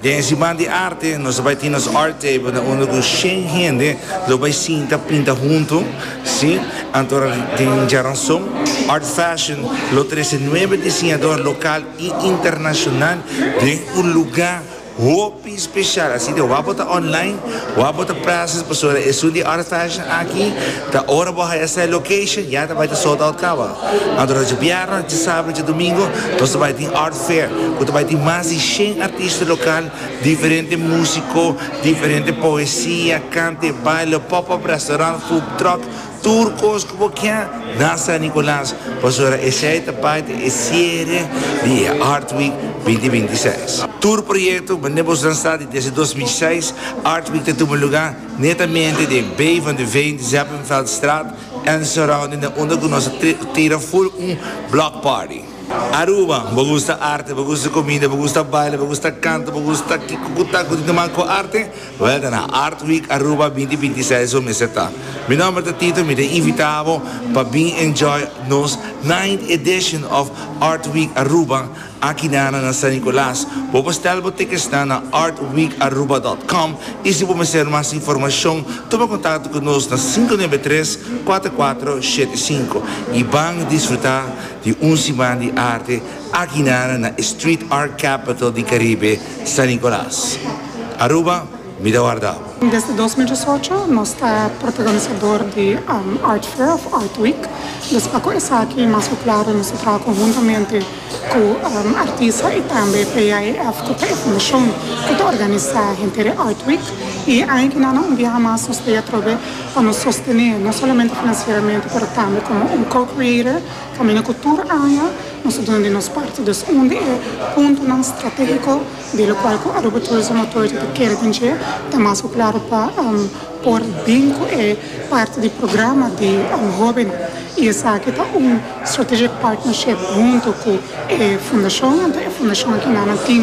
Den e siman di arte nos a bai tin nos art table na unda ku shen hende lo bai sinta pinta huntu, si, anto a tin djaranson. Art Fashion lo trese nuebe disiñador lokal i internashonal den un lugá hopi speshal. Asina ke ora bo ta online, ora bo ta prazes pasobra esun di Art Fashion aki ta ora bo haya sa e location ya ta bai ta sold out kaba. Anto dje bièrnè, dje sabadnan, dje domingo nos ta bai tin Art. Facer cu ta bay tin mas di shen artista local, diferente musico, diferente poesia, cante, baile, pop up, restaurant, food truck, tur cos cu bo kier na San Nicolas, pasobra esey ta part di e cierre di e Art Week binti binti y seis. Tur proyecto mende bo lansa di desde dos mil seis, Art Week ta tuma luga netamente den Bay van de Veen, Zeppenfeldstraat en surrounding den unda cu nos ta tira full un block party. Aruba, bo gusta arte, bo gusta comida, bo gusta baile, bo gusta canta, bo gusta kico cu ta cu tin ta man cu arte? Wel ta na Art Week Aruba binti binti seis bo mester ta. Mi nomber ta Tito mi ta invita bo pa bin enjoy nos ninth edition of Art Week Aruba aki nana na San Nicolas. Bo por stel bo tickets nan na artweekaruba.com y si bo mester mas informacion tuma contacto cu nos na cinco nuebe tres cuater cuater shete cinco y ban disfruta Di un siman di arte akinara na e street art capital di Caribe, San Nicolas. Aruba, mi ta wardao. Desde dos mil diesocho nos ta protagonisador di Art Fair of Art Week. Dus pa cu esaki mas cu claro nos ta traha conhuntamente cu artista y tambe PAEF cu ta e fundacion cu ta organisa henter e Art Week. Y aña ki na na un biaha mas nos ta e atrobe pa nos sostené no solamente finansieramente pero tambe komo un co-creator kaminda ku tur aña nos ta duna di nos parti dus un di e puntonan stratégiko di lokual ku Aruba Tourism Authority ta kere den dje ta mas ku klaro pa por bin ku e parti di programa di hóbennan i esaki ta un strategic partnership huntu ku e fundashon anto e fundashon aki nan a tin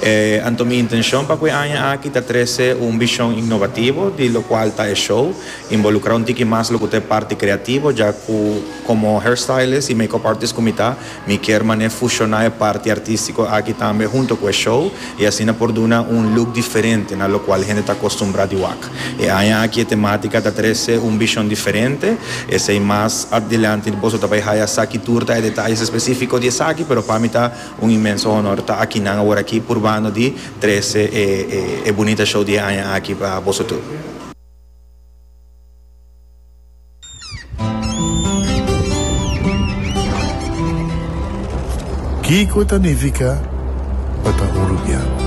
E anto mi intencion pa cu e aña aki ta trece un bishon innovativo di locual ta e show, involucra un tiki mas locuta e parti creativo, ja cu como hairstylist y make-up artist cu mi ta, mi kier mane fusiona e parti artistico aki tambe hunto cu e show y asina por duna un look diferente na locual hende ta acostumbra di wak. E aña aki e tematica ta trece un bishon diferente, esey mas adelante boso ta bay haya saki tur ta e detalles especifico di esaki, pero pa mi ta. Un inmenso honor ta aki nan awor aki purbando di trese e bunita show di e aña aki pa boso tur. Kiko ta nifica pa ta urubiano?